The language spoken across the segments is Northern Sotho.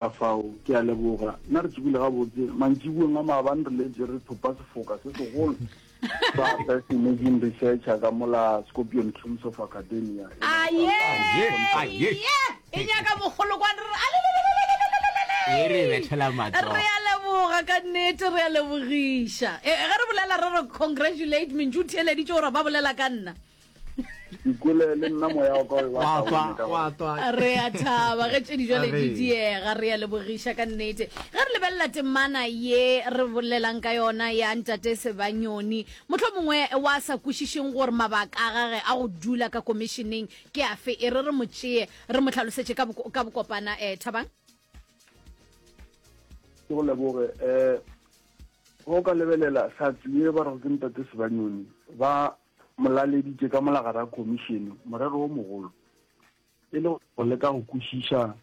Kafao, ke a leboga. Nna re tsogile gabotse mantšibueng a maabane re letse re thopa sefoka se segolo sa Best Emerging Researcher ka mola Scorpion Cruise of Academia. Aye! Aye! E nyaka mogolo kwa re re alelelelelelelelele. E re bethela matsogo. Re a leboga ka nnete, re a lebogiša. E, ge re bolela re re congratulate, mentšu o theeleditše gore ba bolela ka nna. ikole le nna moya wa ka wa tswa wa tswa re a thaba ge tšedi jale di diega re ya lebogiša ka nnete ge re lebelela temana ye re bolelang ka yona ya ntate sebanyoni motlho mongwe wa sa kwešišeng gore mabaka a gage a go dula ka komišeneng ke afe e re re mo tšee re mo tlhalosetše ka bokopana um eh, thabang ke go leboge um go ka lebelela sa tsuye ba rego ke ntate sebanyoni ba mo laleditše ka molagare ya khomišene morero wo mogolo e le go leka go kwešiša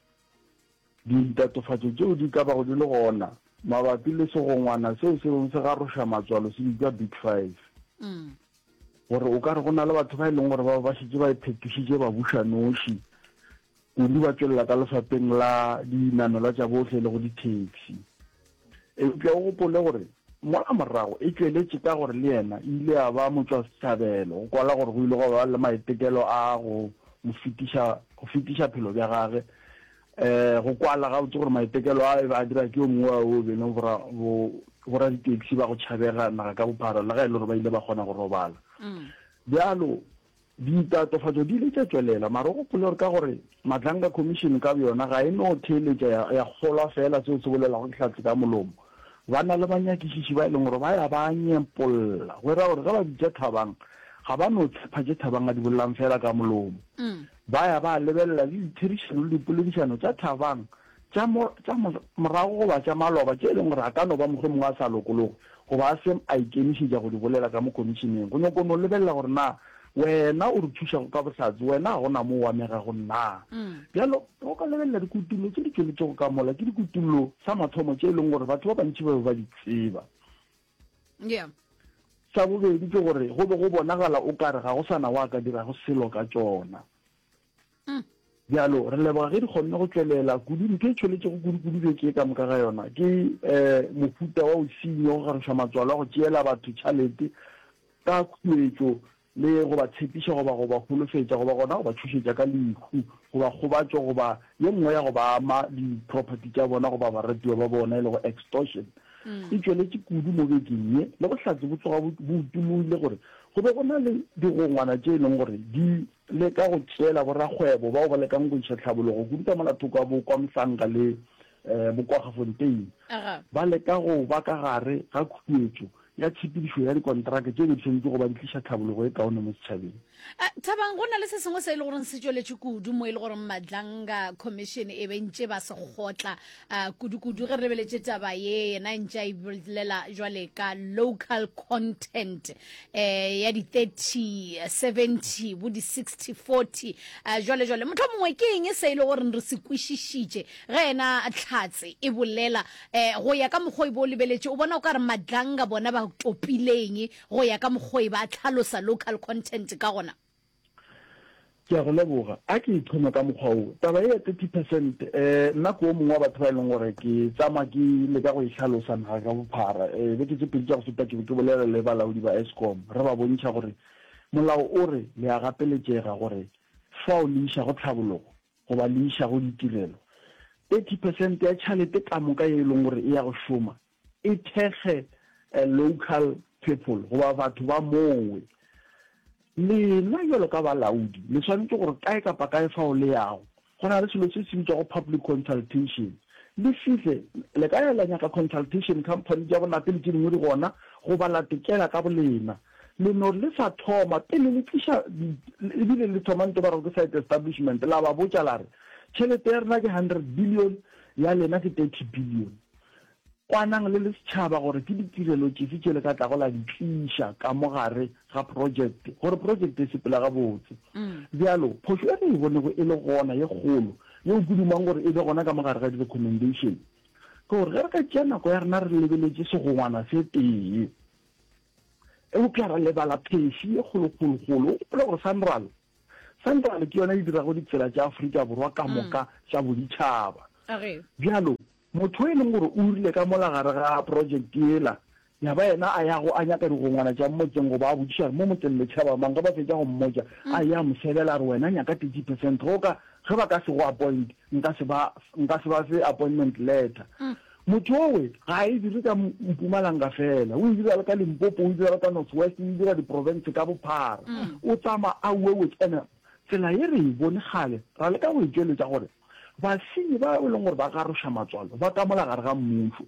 ditatofatšo tšeo di ka bago di le gona mabapi le segongwana seo se beng se garoša matswalo se bitšwa big five mm. gore o ka re go na le batho ba e leng gore ba ba šetse ba iphetošitše ba buša noši Kudu ba tšwelela ka lefapheng la dinamelwa tša bohle le go dithekisi. Eupša o gopole gore mola morago e tšweletše ka gore le yena e ile ya ba motšwasehlabelo go kwala gore go ile gwa ba le maitekelo a go mo fetiša go fetiša phelo bja gage go kwala gabotse gore maitekelo a e be a dira ke yo mongwe wa o bene boraditaxi ba go tšhabega naga ka bophara le ga e le gore ba ile ba kgona go robala bjalo Ditatofatšo di ile tša tšwelela, mara o gopole gore ka gore Madlanga Commission ka boyona ga e no theeletša ya, ya kgolwa feela seo se bolelwago ke Hlatse ka molomo. Ba na le banyakišiši ba e leng gore ba ya ba nyepolla, go e ra gore ge ba bitša Thabang ga ba no tshepha tše Thabang a di bolelang feela ka molomo. Ba ya ba lebelela le ditherišano le dipoledišano tša Thabang tša mo, tša mo, morago goba tša maloba tše e leng gore a ka no ba mohlomongwe a sa lokologwe goba a se a ikemišetša go di bolela ka mo Khomišeneng. Go nyoko no lebelela gore na Wena o re thušago ka bohlatse, Wena ga go na mo o amegago na. Bjalo, ge o ka lebelela dikutullo tše di tšweletšego ka mola, ke dikutullo sa mathomo tše e leng gore batho ba bantši ba be ba di tseba. Yeah. Sa bobedi ke gore go be go bonagala o ka re ga go sa na wa ka dirago selo ka tšona. Mm. Bjalo, re leboga ge di kgonne go tšwelela. Kudu, ntho e tšholetšego kudu-kudu beke ye ka moka ga yona ke um mohuta wa bosenyo, go gagešwa matswalo a go tšeela batho tšhalete ka khuetšo le go ba tshepiša goba go ba holofetša goba gona go ba tšhošetša ka lehu goba kgobatšo goba ye nngwe ya go ba ama di-property tša bona goba baratiwa ba bona e le go extortion. Mm. E tšweletše kudu mo bekeng ye, le bohlatse bo tsoga bo utologile gore go be go na le digongwana tše e leng gore di le ka go tšeela borakgwebo bao ba lekang go iša tlhabologo kudu ka mola thoko ga Bokwamhlanga le Bokwagefontein, ba leka go ba ka gare ga khuetšo ya tshepedišo ya dikonteraka tše be di swanetše go ba di tliša tlhabologo e kaone mo setšhabeng. Thabang, go na le se sengwe se e le gore se tšweletšwe kudu mo e le gore Madlanga Commission e bentše ba se kgotla A kudu-kudu ge re lebeletše taba ye yena ntše a ibolela jwale ka local content eh, ya di 30 70 bo di 60 40 eh, jwale jwale motho mongwe ke eng e se e le gore re se kwešišitše ge yena tlhatse e bolela eh, go ya ka mokgwa e bo o lebeletše o bona o ka re madlanga bona ba topileng go ya ka mokgwa e ba tlhalosa local content ka gona Ke a go leboga. A ke e thome ka mokgwa wo. Taba ye ya thirty percent, um nna ke o mongwe wa batho ba e leng gore ke tsamaya ke leka go e hlalosa naga ka bophara. Um beke tse pedi tša go feta ke be ke bolela le balaodi ba Eskom re ba bontšha gore molao o re le a gapeletšega gore fao le išago tlhabologo goba le išago ditirelo, thirty percent ya tšhalete ka moka ye e leng gore e ya go šoma E thekge a local people goba batho ba mowe. Lena bjalo ka balaodi le swanetše gore kae kapa kae fao le yago go na le selo se se bitšwago public consultation, le fihle le ka ya la nyaka consultation company tša bona pele tše dingwe di gona goba la tekela ka bolena. Le no le sa thoma pele le tliša e bile le thoma nto ba rego ke site establishment la ba botša la re tšhelete ya rena ke hundred billion ya lena ke thirty billion Kwanang le le setšhaba gore ke ditirelo tšefe tše le ka tlago la di tliša ka mo gare ga projekte gore projekte e sepela gabotse. Bjalo, phošo e re e bonego e le gona ye kgolo, yeo ke dumang gore e be gona ka mo gare ga di-recommendation, ke gore ge re ka tšea nako ya rena re lebeletše segongwana se tee, eupša ra lebala phesi ye kgolokgolokgolo. O gopole gore Sanral, Sanral ke yona e dirago ditsela tša Afrika Borwa ka moka tša boditšhaba. Bjalo, Motho yo e leng gore o rile ka mola gare ga project yela, ya ba yena a yago a nyaka digongwana tša motseng goba a botšiša gore mo motseng le tšhaba mang, ge ba fetša go mmotša, a eya a mo sebela a re, wena nyaka thirty percent go ka, ge ba ka se go appoint, nka se ba, nka se ba fe appointment letter. Motho yowe ga a e dire ka Mpumalanga fela, o e dira le ka Limpopo, o e dira le ka North West, o e dira di province ka bophara, o tsamaya a uwe with, and-e tsela ye re e bone kgale, ra leka go e tšweletša gore, Basenyi bao e leng gore ba garoša matswalo ba kamola gare ga mmušo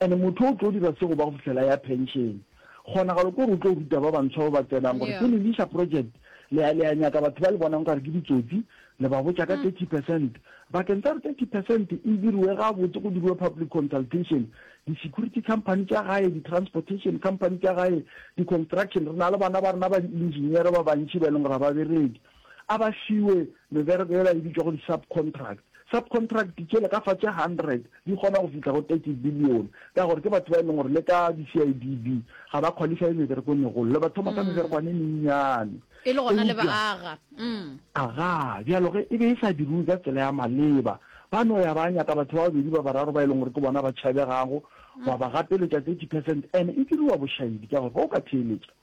and motho o tlo dira se go ba go fihlela ya pension. Kgonagalo ke gore o tlo ruta ba bantshwa ba ba tsenang gore pele le iša project le ya le ya nyaka batho ba le bonang nkare ke ditsotsi le ba botša ka thirty percent bakeng tsa gore thirty percent e diriwe gabotse go diriwe public consultation di-security company tša gae di-transportation company tša gae di-construction re na le bana ba rena ba di-engineer ba bantši ba e leng gore ga ba bereke a ba fiwe mebereko yela e bitšwago di-subcontract. Subcontract tšele ka fa tše hundred di kgona go fihla go thirty billion ka gore ke batho ba e leng gore le ka di-CIDB ga ba qualify meberekong e golo, le ba thoma ka meberekwane e mennyane E le gona le ba eupša aga. Mm. aga bjalo ge e be e sa diriwe ka tsela ya maleba ba no ya ba nyaka batho ba babedi ba bararo ba e leng gore ke bona ba tšhabegago ba ba gapeletša thirty percent and e diriwa bošaedi ka gore ge o ka theeletša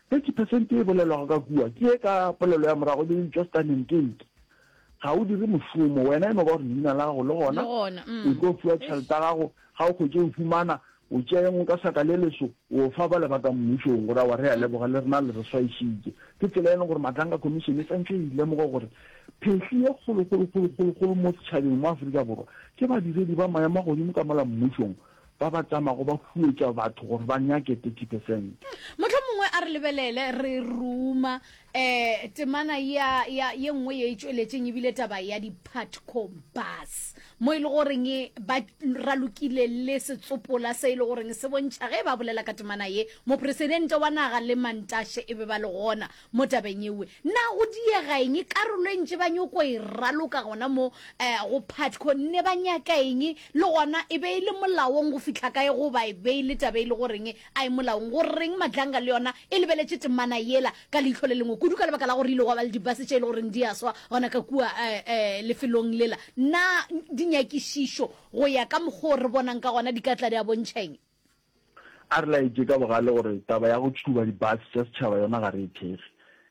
Thirty percent ye e bolelwago ka kua ke ye ka polelo ya morago e be e bitšwa stunning gate. Ga o dire mošomo, wena e no ba gore leina la gago le gona, o tlo fiwa tšhelete ya gago, ga o kgwetše o fumana, o tšea engwe ka saka le leso, o fa bale ba ka mmušong gore awa re a leboga le rena le re swaešitše. Ke tsela e leng gore Matlanga Commission e swantšwe e lemoge gore phehli ye kgolokgolokgolokgolokgolo mo setšhabeng mo Afrika Borwa ke badiredi ba maemo a godimo ka mola mmušong, Ba ba tšamago ba huetša batho gore ba nyake 30 percent. Mohlomongwe a re lebelele re ruma um temana ya, ya, ye nngwe ye e tšweletšeng, e bile taba ya di-Putco Bus, mo e le goreng ba ralokile le setsopola se e le goreng se bontšha ge ba bolela ka temana ye, Mopresidente wa naga le Mantashe e be ba le gona mo tabeng ewe na go diega eng karolo e ntše ba nyoko e raloka gona mo um go patco ne ba nyaka eng le gona e be e le molaong go fihla kae goba e be e le tabe e le goreng a e molaong go reng madlanga le yona e lebeletše temana yela ka leitlho le lengwe kudu ka lebaka la gore ile gwa ba le dibase tše e le goreng di a swa gona ka kua um lefelong lela na dinyakišišo go ya ka mokgwa o re bonang ka gona di ka tla di a bontšheng A re laetše ka bogale gore taba ya go tšhuba dibase tša setšhaba yona ga re e thekge,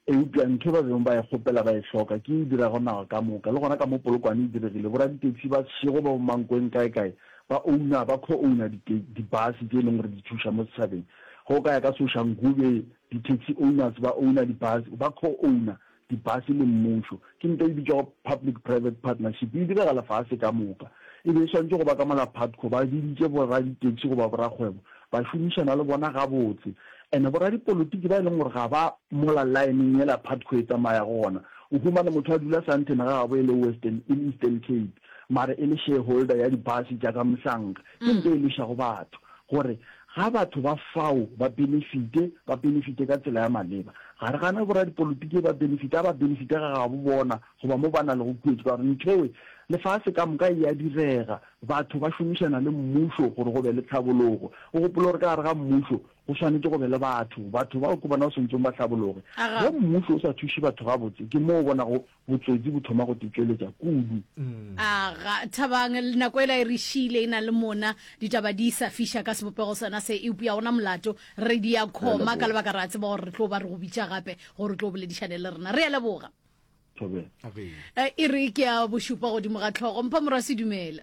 eupša ntho e ba bego ba e kgopela ba e hloka ke ye e dirago naga ka moka. Le gona ka mo Polokwane e diregile, boraditaxi ba sešego ba bo Mankweng kaekae ba ouna, ba co-ouna dibase tše e leng gore di tšhoša mo setšhabeng. Ge o ka ya ka Soshanguve, ditaxi owners ba ouna dibase, ba co-ouna Dibase le mmušo, ke ntwa e bitšwago Public Private Partnership, e direga lefase ka moka. E be e swanetše go ba ka mola Putco ba biditše boraditaxi goba borakgwebo ba šomišana le bona gabotse. And boradipolotiki ba e leng gore ga ba mola laeneng yela Putco e tsamayago gona, o humane motho a dula Sandton ga gabo e le Western, e le Eastern Cape, mara e le shareholder ya dibase tša ka mohlanka. Ke nto e lwešago batho, gore ga batho ba fao ba benefite, ba benefite ka tsela ya maleba. Ga re gane boradipolitiki ba benefite, a ba benefite ga gabo bona goba mo ba na lego kuetšo, ka gore nthwe lefase ka moka e a direga. Batho ba šomišana le mmušo gore go be le tlhabologo. O gopole gore ka gare ga mmušo go swanetše go be le batho. Batho bao ke bona ba swanetšego ba hlabologe. Ge mmušo o sa thuše batho gabotse, ke moo o bonago Botsotsi bo thoma go te tšweletša kudu. A ga Thabang, nako ela e re šiile e na le mona, ditaba di sa fiša ka sebopego sona se, eupša gona molato, re di a khoma ka lebaka re a tseba gore re tlo ba re go bitša gape gore o tlo boledišane le rena. Re a leboga. Thobela. E re ke a bošupa godimo ga tlhogo. Mpha Morwa Sedumela.